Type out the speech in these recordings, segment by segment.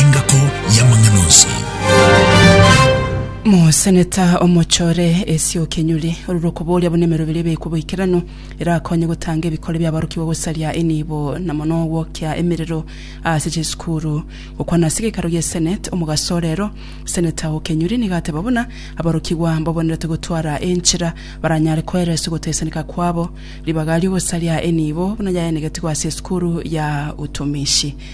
Engako y'amang'ana onsi. Moseneta omochore Asia Okenyori orure okoboria buna emeroberi ebe ekwo boikeranu erakonye gotanga ebikori biaborokigwa gosaria enibo na mono ogwokia emerero ase chisukuru. Gokwana ase gekaro gie Senate omogaso o rero, Seneta Okenyori nigo ateba buna aborokigwa mbabonerete gotwara enchera baranyare koera ase ogotesaneka kwabo ribaga riogosaria enibo buna yaenegetigwe ase esukuru ya Utumishi.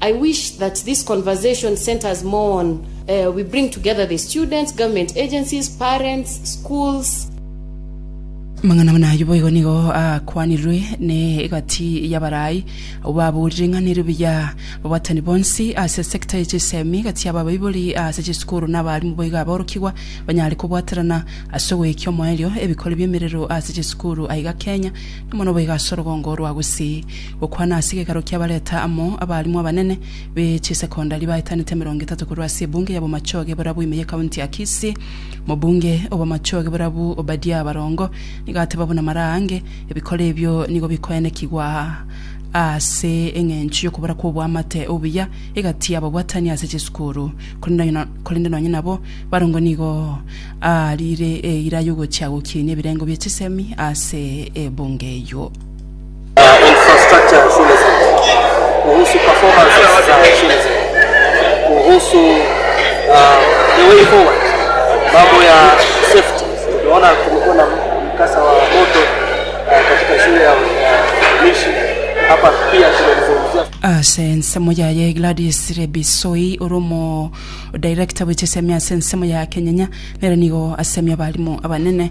I wish that this conversation centers more on uh, we bring together the students, government agencies, parents, schools, Amang'ana buna ayio boigo nigo akwanirwe ne egati y'abarai, abwo babuurire ing'ana erio buya, ababaatani bonsi ase sector ye chisemi, gati y'ababaibori ase chisukuru na abaalimu boigo aborokigwa banyare kobwaterana ase ogoekia omoerio ebikori bi'emerero ase chisukuru aiga Kenya, na mono boigo ase orogongo rwa gusii. Gokwana ase ekegaro ki'abareta amo abaarimwa abanene be chisekondari baetanete emerongo etato korwa ase ebunge ya Bomachoge borabu ime y'ekaunti ya Kisii. Omobunge o Bomachoge borabu Obadia Barongo nigo ateba buna maraange ebikoro ebio nigo bikoenekigwa ase eng'encho y'okobora kw'oboamate obuya egati y'ababwatani ase chisukuru korende nonya nabo Barongo nigo aariire eira y'ogochia gokiinia ebirengo bie chisemi ase ebunge eyio. Ase ensemo yaye Gladys Lebisoi ore omo director bwe chisemi ase ensemo ya Kenyenya nere nigo asemi abalimo abanene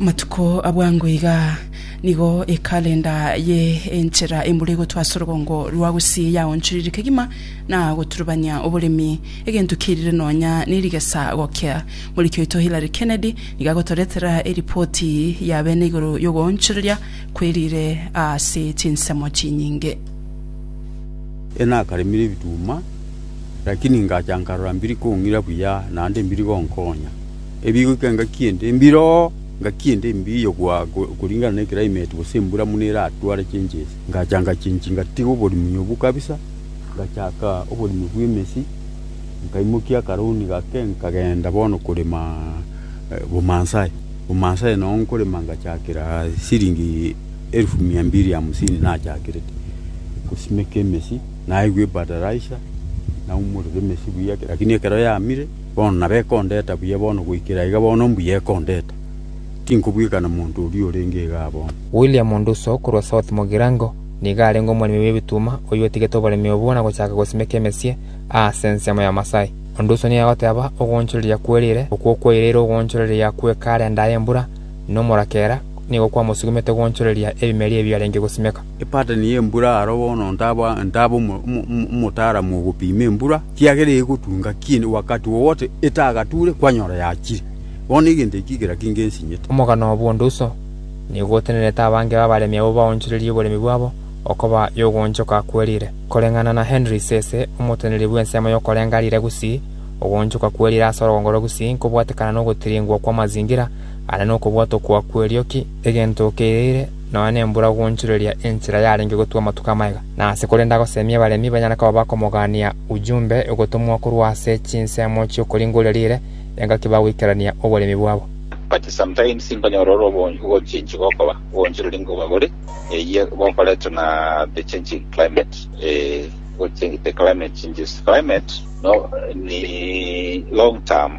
Amatuko a bwango iga nigo ekalenda ye enchera embura egotwa ase orogongo rwa Gusii yaonchorire kegima na goturubania oboremi, egento kiairire nonya nerigesa gokia. Moriki oito Hillary Kennedy nigo agotoretera eripoti ya bene igoro yogoonchoreria kwerire ase chinsemo chinyinge. Nakaremire ebituma, lakini ingacha nkarora mbiri kong'ira buya, naende mbiri gonkonya. Ebigoika engaki ende mbiro oo, engaki ende mbi yogwa koringana ne climate gose embura buna eratware changes. Ngacha ngachenchi ngatiga oborimi obwo kabisa, ngachaka oborimi bwa emesi, nkaimokia akaroni gake nkagenda bono korema bomaasai. Bomaasai noo nkorema ngachakera siringi. Elfu mia mbili hamsini nachakerete gosimeka emesi, naigwa ebadaraisa, naumorera emesi buya, lakini ekero yamire, bono nabo ekondeta buya bono, goikera iga bono mbuya ekondeta. Tinkobwekana monto oria orenge iga abono. William Onduso korwa South Mugirango nigo arenge omoremi bw'ebituma oyio otigete oboremi obwo na gochaka gosimeka emesie aase ensemo ya Masai. Onduso nigo agoteeba, Ogoonchoreria kwerire, okwo okwaire ere ogoonchoreria gw'ekaara endaaya embura, nomorakera, nigo kwamosugumete gwanchoreria ebimeria ebi arenge gosimeka. Epattern y'embura aro bono ntaba ntaba omo- omo- omo- omotaaramu ogopima embura, kiagera egotunga kinde wakati wowote etagature kwanyora yachire. Bono egento eki kera kinge nsinyete. Omogano bw'onde uso nigo otenerete abange b'abaremi abwo baonchoreria oboremi bwabo okoba y'ogoonchoka kwerire. Koreng'ana na Henry Sese, omoteneri bw'ensemo y'okorenga riire gusii, ogoonchoka kwerire ase orogongoro gusii nkobwatekana nogotiringwa kw'amazingira, Aria nokobwata okwo kw'erioki egento keirire nonya nembura goonchoreria enchera yarenge gotwa amatuko amaya, na ase korenda agoseemie abaremi banyare koba bakomogaania ojumbe ogotomwa korwa ase chinsemo chi'okoringoria riire, engaki bagoikerania oboremi bwabo. But sometimes nkonyora ore obonge ogochiinchia gokoba oboonchoreri nkoba bore eyio bokoretwe na the changing climate eeh, the climate changes, climate no ni long term.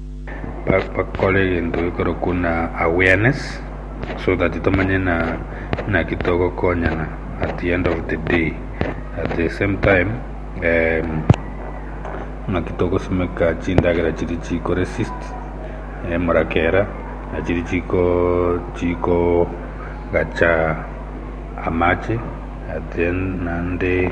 bakore egento gekorokwa buna awareness so that tomanye buna naki togokonyana at the end of the day at the same time naki togosimeka chindagera chiria chiko resist emuragera na chiria chikogacha amache naende.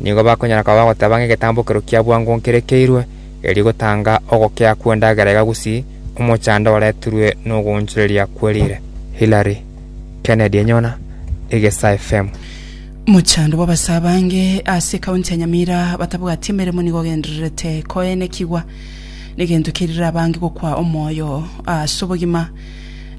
nigo bakonyara koba bagoteba ng'a egetambo ekero kia bwango nkerekeirwe, erio gotanga ogokea kw'endagera iga gusii omochando oreturwe n'ogoonchoreria kwe riire. Hillary Kennedy Enyona, Egesa FM. Mochando bw'abasee abange ase ekaunti ya Nyamira batabwati emeremo nigo ogendererete koenekigwa, negento kerire abange gokwa omoyo ase obogima.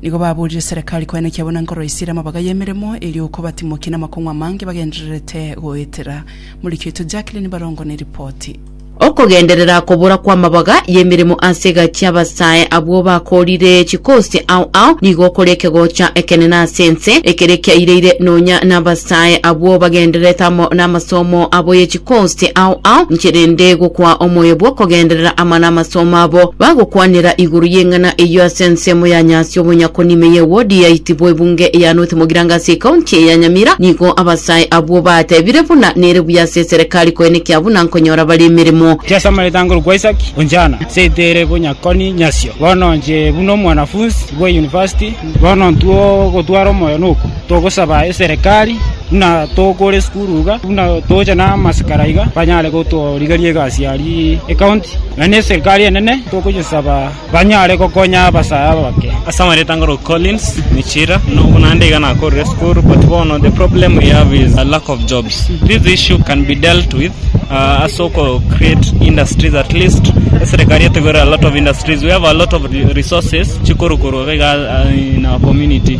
Nigo baboorire Serekari koenekia buna nkoroisia ere amabaga y'emeremo, erio kobatimokie namakong'u amange bagendererete goetera. Moriki oito Jacqueline Barongo neripoti. Okogenderera kobora kw'amabaga y'emeremo ase egati y'abasae abwo bakoorire chikosi ao ao nigo kore ekegocha ekenene ase ense, ekere kiaireire nonya nabasae abwo bagendererete amo namasomo abo ye Gose ao ao inche rende gokwaa omoyo bw'okogenderera amana 'amasomo abo, bagokwanera igoro y'eng'ana eyio ase ensemo ya nyasi obonyakonime ye wodi ya Itibo ebunge ya North Mogiranga ase ekaunti eye ya Nyamira. Nigo abasae abwo batebire buna nere buya ase eserekari koenekia buna nkonyora bare emeremo. Inche ase amaete ange orokwa Isaac Onjana, inche tere bonyakoni nyasio. Bono inche buna omwanafunsi bwa University, bono intwe ogotwara omoyo nokwo. Togosaba eserekari buna togokora esukuru iga, buna togocha namasikara iga, banyare gotorigeria egasi aria ekaunti, na neserikari enene togoyesaba banyare gokonya abasae abake. Ase amareeta ngoro Collins Michira, Nobwo naende iga nakorire esukuru but bono the problem we have is a lack of jobs. This issue can be dealt with uh, ase oko create industries at least eserekari etogore a lot of industries. We have a lot of resources chikorukorwa iga in our community.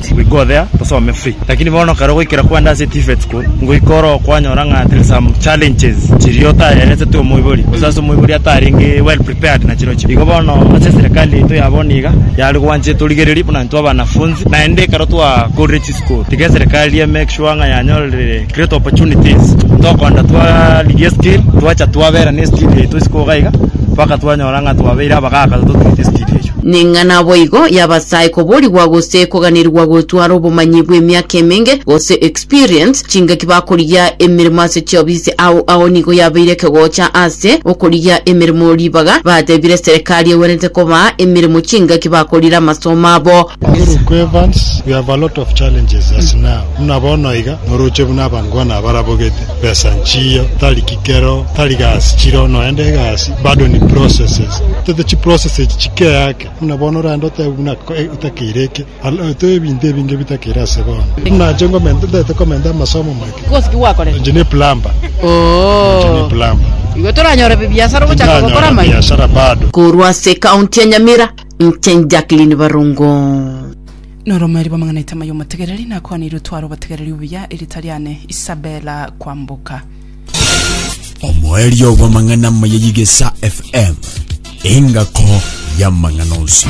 We go there tosome free lakini bono kare ogoikera kwande ase TVETs ko ngoika oro kwanyora ng'a there is some challenges chiria otaeresetwe omoibori gose ase omoibori atarenge well prepared na chirochio. Igo bono ase eserekari yaito ya bono iga yare gwancha etorigererie buna intwe abanafunzi naende ekero twakorire chisukuru tiga eserekari e make sure ng'a yanyorire Great opportunities tokoenda twarigia skill twacha twabera ne skill yaito isiko iga iga mpaka twanyora ng'a twabeire abagaka totuete skill eyio. Ning'a naboigo y'Abasai koborigwa gose koganirigwa gotwara obomanyi bw'emiaka emenge gose experience chingaki bakorigia emeremo ase chiofisi ao ao nigo yabeire ekegocha ase okorigia emeremo ribaga batebire serekari egwenerete kobaa emeremo chingaki bakorire amasomo abo. Orokwe Evans, We have a lot of challenges as now. Buna bono iga, norooche buna abangwana abarabogete besa nchiyo, tari kikero, tari gasi chiro, noende egasi, bado ni processes. Tete chi process echi chikeake, buna bono oraende otebe buna otakeire eke, otebe ebinto ebinge bitakeire ase bono. Buna inche ngomenta, ntagete komenta amasomo make. Kosi ki gwakorete? Inche ne plumber. Inche ne plumber. Igo toranyore bibiasara ogochaka gokora Tindanyora amaiga. biashara bado. Korwa ase County ya Nyamira, inche Jacqueline Barongo. Noromeri bw'amang'ana aitama y'omotegereri, nakwaneirwe tware obotegereri obuya, erita riane Isabella Kwamboka. Omoerio bw'amang'ana amaya y'Igesa FM, engako y'amang'ana onsi.